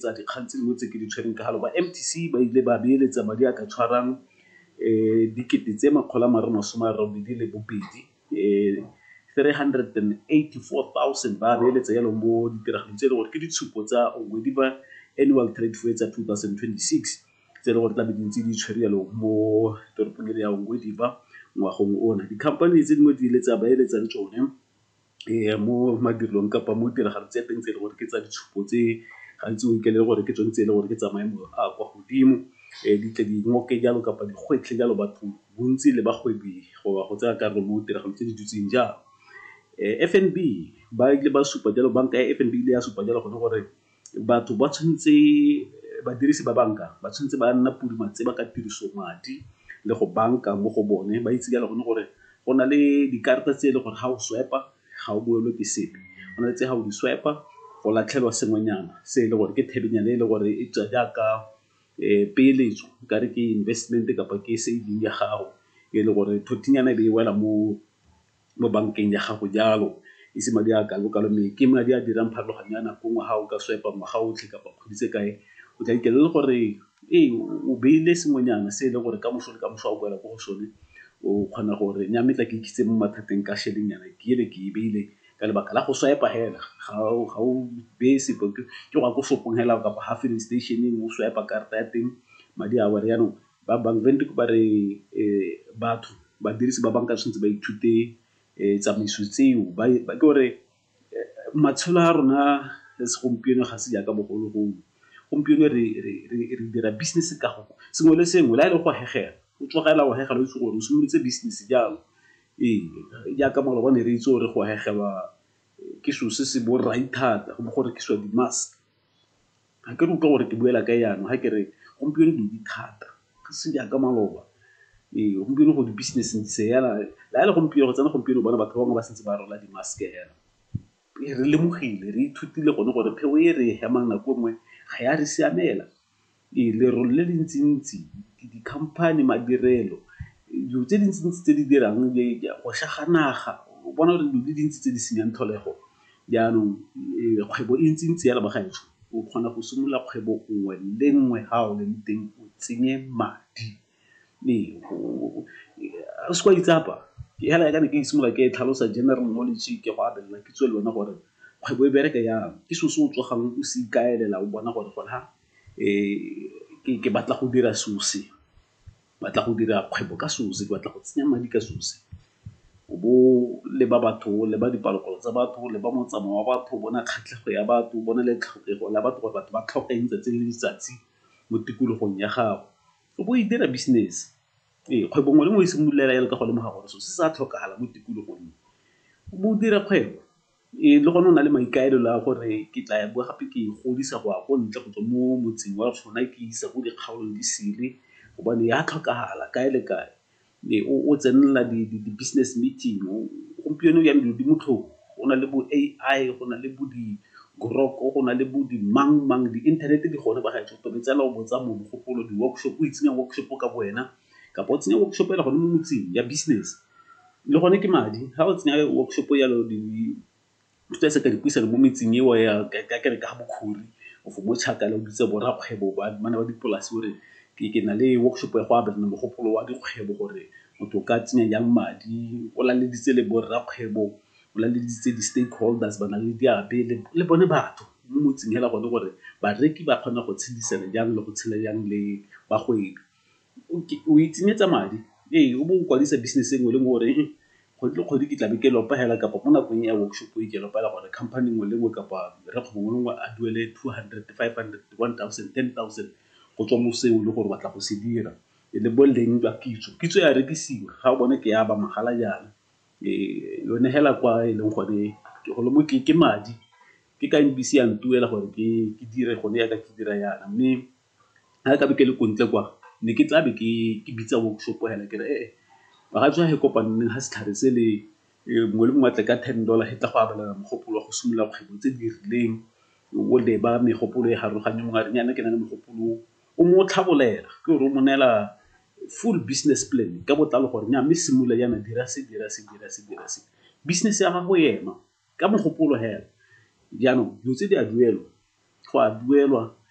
tsa dikgang tse dingwe tse ke di tshwereng ka galo ba mtc ba ile ba beeletsa madi a ka tshwarang um dikete tse makgolo a mare masome a robedi le bobedi um 384,000 ba beeletsa yalo mo ditiragalong tse e le gore ke ditshupo tsa ongwediba annual trade fair tsa 2026 tse e le gore tlabe dintse di tshwere yalo mo toropong e le ya ongwediba ngwagong ona dikhamphane tse dingwe di ile tsa beeletsa le tsone mo madirelong kapa mo tiragalo tse teng tse e le gore ke tsa ditshupo tse gantsi o ikaelele gore ke tsone tse e le gore ke tsa maemo a kwa godimo di tle di ngoke jalo kapa di gwetlhe jalo batho bontsi le bagwebi go ba go tsaya karolo mo tiragalo tse di dutseng jalo. F_N_B ba ile ba supa jalo banka ya F_N_B e ile ya supa jalo gone gore. batho ba tshwanetse, badirisi ba banka ba tshwanetse ba nna podi tse ba ka tiriso madi le go banka mo go bone, ba itse jalo gone gore go na le dikarata tse e leng gore ga o swipe-a ga o boelwe ke sepe, go na le tse ga o di swipe-a go latlhelwa sengwenyana se e leng gore ke thabenyana e leng gore e tswa jaaka peeletso e kare ke investment-e kapa ke saving ya gago e le gore thothinyana e be e wela mo. mo bankeng ya gago jalo e se madi a kalo-kalo mme ke madi a dirang pharologanyo ya nako nngwe ga o ka swipe-a ngwaga otlhe kapa kgwedi tse kae o tla fitlhela e le gore ee o beile sengwenyana se e leng gore ka moso le ka moso ga o boela ko go sone o kgona gore nya mme tla ke ikitse mo mathateng ka šhelenyana ke ele ke e beile ka lebaka la go swipe-a hela ga o beye sepe ke go ya ko shop-ong hela kapa ga filling station-eng o swipe-a karata ya teng madi a wela jaanong Ba Bank Windhoek ba re batho, badirisi ba banka tshwanetse ba ithute tsamaiso tseo ke gore matshelo a rona le segompieno ga se jaaka bogologolo. Gompieno re dira business ka go sengwe le sengwe le ha e le go hegela o tsoga fela o hegela o itse gore o simolotse business jalo. Ee, jaaka maloba ne re itse gore go hegelwa ke selo se se borai thata go bo go rekisiwa di-mask. Ga ke re utlwa gore ke buela kae jaanong ga ke re gompieno dilo di thata, ga se jaaka maloba. Ee, gompieno go di-business ntse se yana, le ga e le gompieno, go tsena gompieno o bona batho ba bangwe ba santse ba rwala di-mask-e fela. Ee, re lemogile, re ithutile gone gore pheo e re e hemang nako e nngwe ga ya re siamela. Ee, lerole le le ntsi-ntsi, di-company, madirelo, dilo tse di ntsi-ntsi tse di dirang, go sega naga, o bona gore dilo di dintsi tse di senyang tlholego. Jaanong kgwebo e ntse ntse jalo bagaetsho, o kgona go simolola kgwebo nngwe le nngwe ha o leng teng o tsenye madi. Ee, se ke wa itsapa, fela jaaka ne ke simolola ke tlhalosa general knowledge ke go abelana kitso le wena gore kgwebo e bereka jang. Ke selo se o tsogang o se ikaelela o bona gore gona ke batla go dira selo se. batla go dira kgwebo ka selo se, ke batla go tsenya madi ka selo se. O bo o leba batho, o leba dipalopalo tsa batho, o leba motsamao wa batho, o bona kgatlhego ya batho, o bona le tlhokego ya batho gore batho ba tlhoka eng 'tsatsi le letsatsi mo tikologong ya gago. O bo o e dira business, ee kgwebo nngwe le nngwe e simolola fela jalo ka go lemoga gore selo se sa tlhokagala mo tikologong, o bo o dira kgwebo. Ee, le gone o na le maikaelelo a gore ke tla ya bowa gape ke e godisa go ya ko ntle go tswa mo motseng wa rona ke isa ko dikgaolong di sele gobane ya tlhokagala kae le kae. Ee, o tsenela di-business meeting, gompieno jaana dilo di motlhofo go na le bo A_I, go na le bo di-grok, go na le bo di mang mang, di-internet di gone ba gaetsho o tobetsa fela o botsa mogopolo, di-workshop, o itsenya workshop ka bo wena. kapa o tsenya workshop ya gone mo motseng ya business. Le gone ke madi, ga o tsenya workshop ya lo dipuisano mo metseng eo ya kere ka ga bo Khori or for bo Chakala, o bitse bo rakgwebo ba bana ba dipolase o re ke na le workshop ya go abelana mogopolo wa dikgwebo gore motho o ka tsenya jang madi. O laleditse le bo rakgwebo, o laleditse di-stakeholders, ba na le diabe le bone batho mo motseng hela gone gore bareki ba kgona go tshedisana jang le go tshela jang le bagwebi. o itshenyetsa madi. Ee, o bo o kwadisa business e nngwe le nngwe o re kgwedi le kgwedi ke tlabe ke lopa fela kapa mo nakong ya workshop e ke lopa fela gore company nngwe le nngwe kapa rrakgwebo mongwe le mongwe a duele two hundred, five hundred, one thousand, ten thousand go tswa mo seo e le gore batla go se dira. E le boleng jwa kitso, kitso ya rekisiwa ga o bone ke ya ba mahala jaana. Yone fela kwa e leng gone ke golo mo ke madi, ke ka e bese ya ntuela gore ke dire gone jaaka ke dira jaana mme. ga nkabe ke le ko ntle kwa ne ke tlabe ke bitsa workshop hela ke re ee bagaetsho ga e kopaneng ga setlhare se le mongwe le mongwe a tle ka ten dollar he tla go abelana mogopolo wa go simolola kgwebo tse di rileng o leba megopolo e farologane mongwe a re nnyane ke na le mogopolo o mo tlhabolela ke gore o mo neela full business plan ka botlalo gore nya mme simolola jaana dira se, dira se, dira se, dira se. Business ya gago e ema ka mogopolo hela jaanong dilo tse di a duelwa go a duelwa.